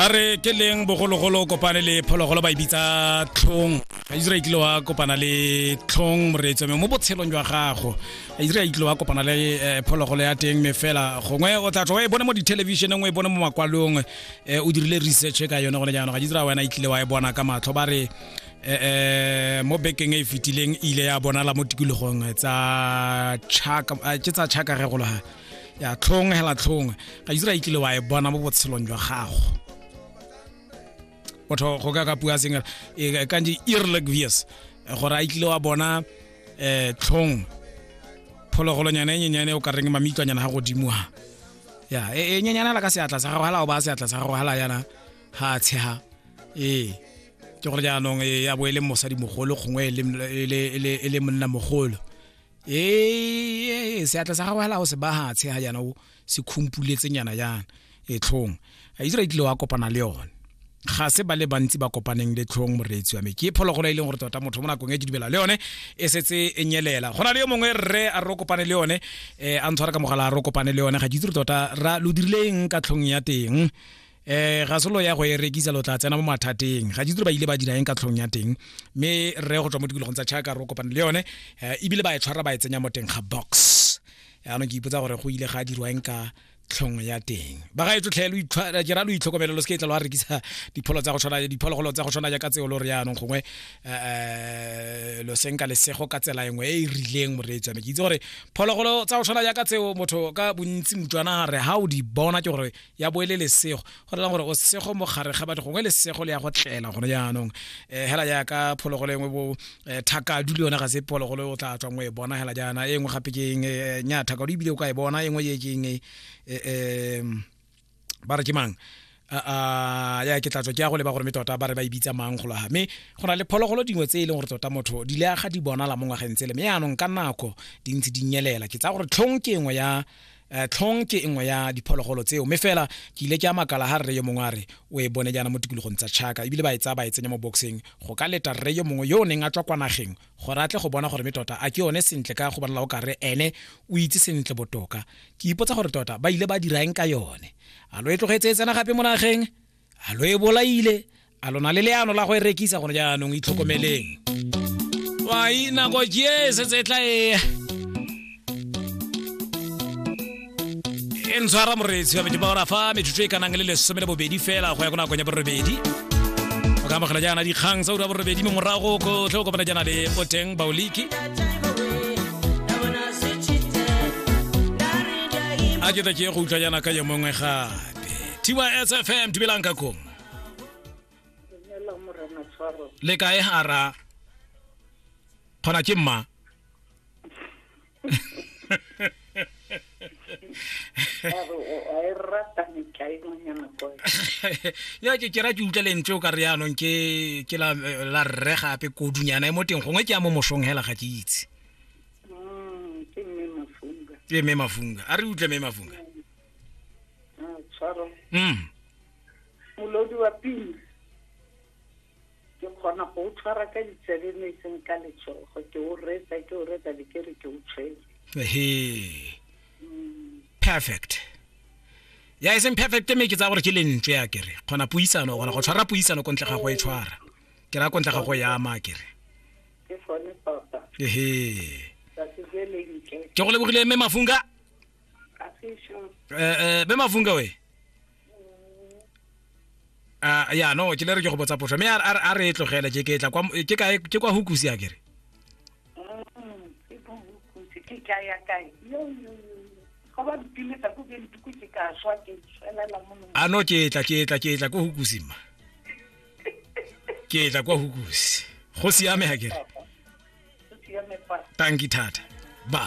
ba re ke leng bogologolo kopane le phologolo ba e bitsa tlhong a isra itlile wa kopana le tlhong moreetso mme mo botshelong jwa gago a isra itlile wa kopana le eh, phologolo ya teng mme fela gongwe o tla tswa o e bone mo dithelebišeneng o e bone mo makwalong eh, o dirile research ka yone gone jaanong ga isra wena itlile wa e bona ka matlho ba re eh, eh mo bekeng e e fetileng ile ya bonala mo tikologong tsa chaka eh, ke tsa chaka ge golo ga ya tlhongwe hela tlhongwe ga isra ikile wa e bona mo botshelong jwa gago botho go ka ka pua seng e ka ndi irleg vies gore a ikile wa bona eh tlhong phologolonyana e nyenyane o ka reng mamitlwanyana ga godimo ha ya e, e nyenyane la ka seatla sa gago hala o ba seatla sa gago hala yana ha tsheha ee ke gore jaanong e ya bo e le mosadi mogolo gongwe e le e monna mogolo ee seatla sa gagwe hela o se bahatshe ga jaana o se khumpuletsengnyana jaana e tlhong a itse re tlile wa kopana le yone ga se ba le bantsi ba kopaneng le tlhong moreetsi wa me ke phologolo e leng gore tota motho mo nakong e ke dumela le yone e setse e nyelela go na le yo mongwe rre a re o kopane le yone um a ntshwara ka mogala a re o kopane le yone ga ke itse re tota ra lo dirileng ka tlhong ya teng eh ga solo ya go e rekisa lo tla tsena mo mathateng ga ditiro ba ile ba dira eng ka tlhong ya teng mme re go tswa mo tikologong tsa chaka ro kopana le yone eh, ebile ba e tshwara ba e tsenya mo teng ga box yaanong ke ipotsa gore go ile ga dirwa eng ka tlhong ya teng ba ga e tlotlhe eh, ke ra lo itlhokomele lo se ke e tla lo a rekisa dipholo tsa go tshwana diphologolo tsa go tshwana jaaka tseo lo re yaanong gongwe um lo senka lesego ka tsela e nngwe e e rileng moreetsi ame ke itse gore phologolo tsa go tshwana jaaka tseo motho ka bontsi motswana re ga o di bona ke gore ya bo e le lesego go rela gore o sego mo gare ga batho gongwe lesego le ya go tlela gone jaanong um eh, hela jaaka phologolo engwe bo eh, thakadu le yone ga se phologolo o tla tswang o e bona hela jaana e nngwe gape ke eng eh, nya thakadu ebile o ka e bona e nngwe ye ke eng um ba re ke mang a ya ke tlatswa ke ya go leba gore me tota ba re ba e bitsa mang go laga mme go na le phologolo dingwe tse e leng gore tota motho di le aga di bonala mo ngwageng tsele mme yaanong ka nako di ntse di nyelela ke tsaya gore tlhong ke engwe ya Eh, tlhong ke nngwe ya diphologolo tseo mme fela ke ile ke a makala ga rre yo mongwe a re o e bone jaana mo tikologong tsa chaka ebile ba e tsaya ba e tsenya mo boxeng go ka leta rre yo mongwe yo o neng a tswa kwa nageng gore a tle go bona gore me tota a ke yone sentle ka go bonala o ka re ene o itse sentle botoka ke ipotsa gore tota ba ile ba dira eng ka yone a lo e tlogetse e tsena gape mo nageng a lo e bolaile a lona le leano la go e rekisa gone jaanong itlhokomeleng wai nako ke setse e tla e e ntshwara moreetsi wa metebora fa metsotso e ka nang le lesome le bobedi fela go ya ko nakong ya borobedi o ka amogela jaana dikgang tsa ura borobedi mme morago ko tlhe o kopana jaana le boteng baoliki a ke ta ke go utlwa jaana ka yo mongwe gae tysfm dumelang ka kong le kae hara kgona ke mma ya ke kera ke utlwa lentswe o ka re yanong ke ke la la rre gape kodunyana e mo teng gongwe ke ya mo mosong hela ga ke itse ke mme mafunga a re utlwe mme mafunga Ah, tshwaro mm molodi wa pina ke kgona go o tshwara ka ditsebe mme e seng ka letsogo ke o retsa ke o retsa le ke re ke o tshwere he perfect ya e seng perfect mme ke tsa gore ke lentswe ya kere kgona puisano o kgona go tshwara puisano ko ntle ga go e tshwara ke ra ko ntle ga go ya ama kere ke gone tota ehe tsatsi le lentle ke go lebogile mme mafunga Atisho. Eh, eh, be mafunka we Ah, ya no ke le re ke go botsa potso mme a re- a re- a re e tlogele ke ke tla kwa ke kae ke kwa hukusi a kere Mm, e bohukutse ke ka ya kae yo yo yo go ba mpiletsa ko ke ntuku ke ka swa ke tswelela mo nong a no ke tla ke tla ke tla kwa hukusi mma ke tla kwa hukusi go siame a kere o siame fa tanki thata ba